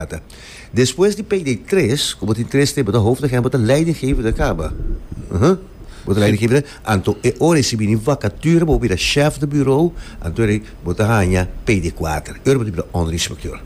Data. Despues di peiné tres, ku bo tin tres te, bo ta hoofd agent, bo ta leidinggevende kaba. Aha. Bo ta leidinggevende, anto e ora e sibi di vakature bo bira shèf di buro, anto rei bo ta haña peiné kuater. E ora bo ta bira ònder inspekteur.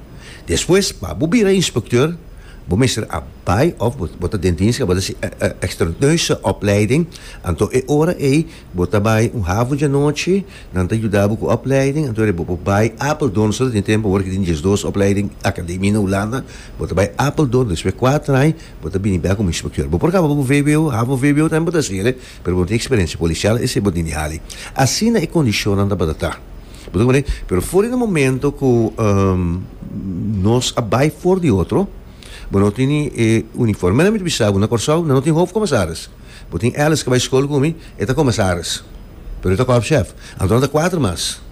Despues, pa bo bira inspekteur, bo mester a bai òf bo ta den dienst, bo ta hasi extraneuse opleiding, anto e ora ei, Bo ta bai un hafu dje anochi, nan ta yuda bo ku opleiding, anto e bo por bai Apeldoorn so ta tin tempu awor ke tin djes dos opleiding akademi na Hulanda, bo ta bai Apeldoorn despues kuater aña bo ta bini bek komo inspekteur. Bo por kaba ku vwo, hafu vwo tambe bo ta hasiele, pero bo no tin eksperensia polisial, esei bo tin di hali. Asina e kondishonnan tabata ta. Bo ta konprende? Pero for di un momento ku nos a bai for di otro, bo no tini e uniformenan mi ta bisa bo na Kòrsou nan no tin hofkomisaris. Bo tin Alice ke bai skol ku mi? E ta komesaris, pero e ta kòf shèf. Anto nan ta kuater mas.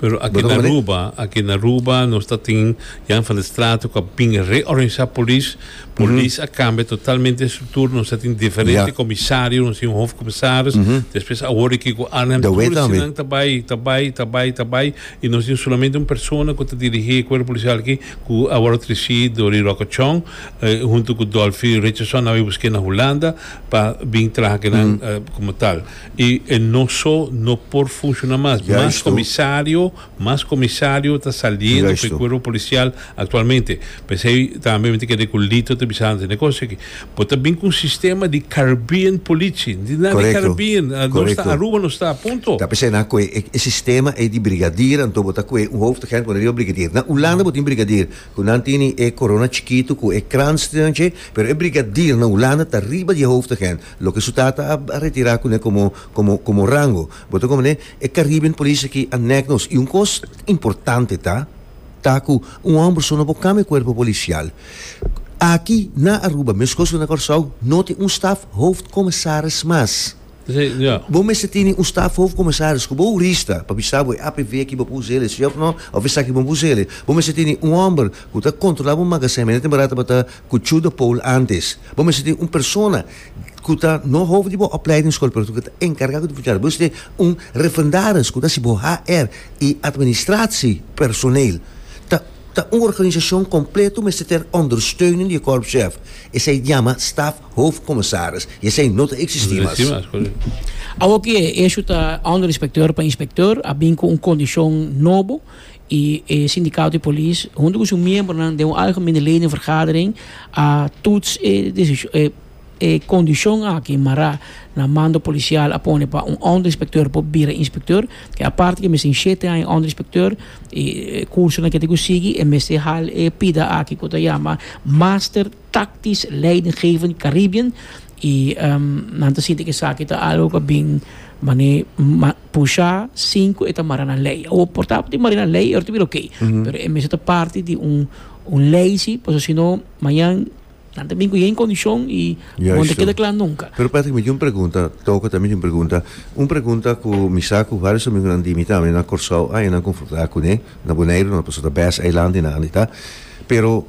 Pero aki na Aruba, aki na Aruba nos ta tin Jan van der Straten ku a bin reorganisá polis. Polis a kambia totalmente estruktur. Nos ta tin diferente komisario, nos tin un hofkomisaris. Despues awor e ki ku Arnhem tur esnan ta bai, ta bai, ta bai, ta bai i nos tin solamente un persona ku ta dirigí e kuerpo polisial aki ku awor a tresí Dory Rocketshorn huntu ku Dolphy Richardson nan bai busk'é na Hulanda. pa bin traha kinan como tal y e no so no por funciona mas mas comisario mas comisario ta saliendo cu e cuerpo policial actualmente pesey tambe mi ta kere cu Lito ta bisa antes na e cosa aki bo ta bin cu un sistema di caribbean police no tin nada di caribbean nos sta Aruba nos sta punto ta pesey nan cu e sistema ey di brigadier anto bo ta cu un hoofd agent cu nan riba brigadier na Hulanda bo tin brigadier. Cu nan teni e corona chikitu cu e kransten dje, pero e brigadier na Hulanda ta riba di e hoofdagent, loke su tata a a retira cune como como como rango. Bo ta comprende? E Caribbean Police aki a neg nos. Y un cos importante ta, ta cu un homber so no por cambia e cuerpo policial. Aki na Aruba, mescos cu na Corsou, no tin un staf hoofdcommissaris mas. Bo mester tene un staf hof comisaris cu bo rista pa bisa bo e APV aki bo puso el'e si of no of esaki bo puso el'e. Bo mester tene un homber cu ta controla bo magazijn mira temporada tabata cu chu de poul antes. Bo mester tene un persona cu ta no hof di bo opleidingsschool pero cu ta encarga cu ta funcionario. Bo mester tene un referendaris cu ta hasi bo HR y administratie personeel. Ta ta un organisacion completo mester ter ondersteuning di e korpschef. Esai yama staf. Hoofdcommissaris, y esey no ta existi mas. Awor cu e hecho ta under inspecteur pa inspecteur, a bin cu un condicion nobo y e Sindicato di Polis hunto cu su miembronan den un algemene ledenvergadering a toets e e condicion aki mara na mando policial a pone pa un under inspecteur por bira inspecteur, ke aparte cu e mester tin shete aña under inspecteur y e cursonan cu e tin cu sigui e mester hal e pida aki cu ta yama Master. tactisch leidinggevend Caribbean y nan ta sinti cu esaki ta algo cu a bin mane pusha sin cu e ta mara na ley. Awor por tabatin mari na ley y ora ta bira ok, pero e mester ta parti di un ley si pasobra si no mañan nan ta bin cu yen condicion y no ta keda cla nunca. Pero Patrick mi tin un pregunta, Toke tambe tin un pregunta, un pregunta cu mi sa cu varios amigonan di mi tambe na Corsou aña nan confronta cu ne. Na Boneiru no ta pasobra ta best eiland di nan anita pero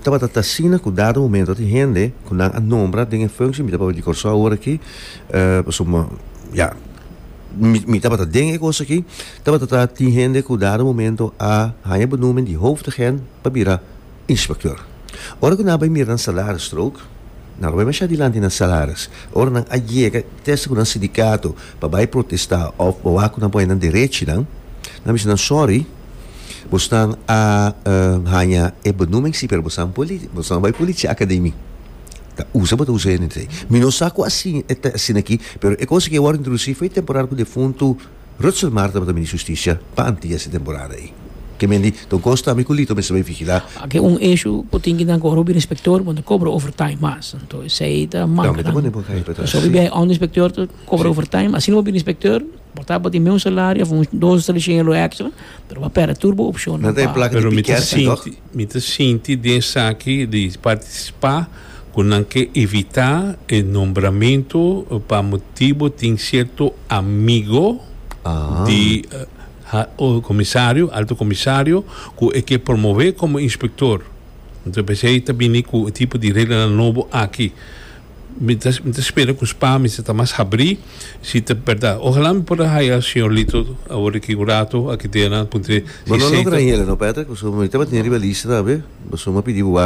tabata ta asina cu dado momento tin hende cu nan a nombra den e functie mi ta papia di Corso awor aki pasobra ya mi tabata den e cos aki tabata ta tin hende cu dado momento a haya benoemen di hoofd agent pa bira Inspector. Ora cu nan a bay mira nan salaris stroke, nan lo bay masha dilanti nan salaris. Ora nan a yega ta esta cu nan sindicato pa bay protesta of wawa cu nan por hay nan derechinan, nan a bisa nan sorry, bosnan a haya e benoeming si pero bosnan bosnan bay policia academy. Ta usa bo ta usa e. Mi no sa cu asin e ta asin aki pero e cosa cu e wor introduci foi temporada cu defuntu. Rutshel Mar tabata Minister Justicia pa Antillas e temporada ei. Ke mendi Don Costa, mi ku Lito mester bai vigila. Ake un eshu ku tin ki na kobra hopi inspektor bo ta kobra overtime mas. Anto esei ta manka. Tambe ta pone bo kai pa tras. Hopi biahe onderinspektor ta kobra overtime. Asina bo hopi inspektor por tabata tin meun salario of un dos tres shingelo extra pero bo a perde tur bo opshonnan pa. Nan ta e plaka di piker si toch? Mi ta sinti den esaki di partisipá ku nan ke evitá e nombramentu pa motibu tin sierto amigo di komisario, alto komisario, ku e ke promové komo inspektor. Enton, p'esei ta bini ku e tipo di reglanan nobo aki. Mi ta mi ta spera cu Spami si ta mas habri, si ta berdad. Ojalá mi por a haya Señor Lito awor di aquí un rato aki dena puntra Bo no logra hiela no Patrick, pasobra mi tabatin riba lista tambe, pasobra mi a pidi bo wak.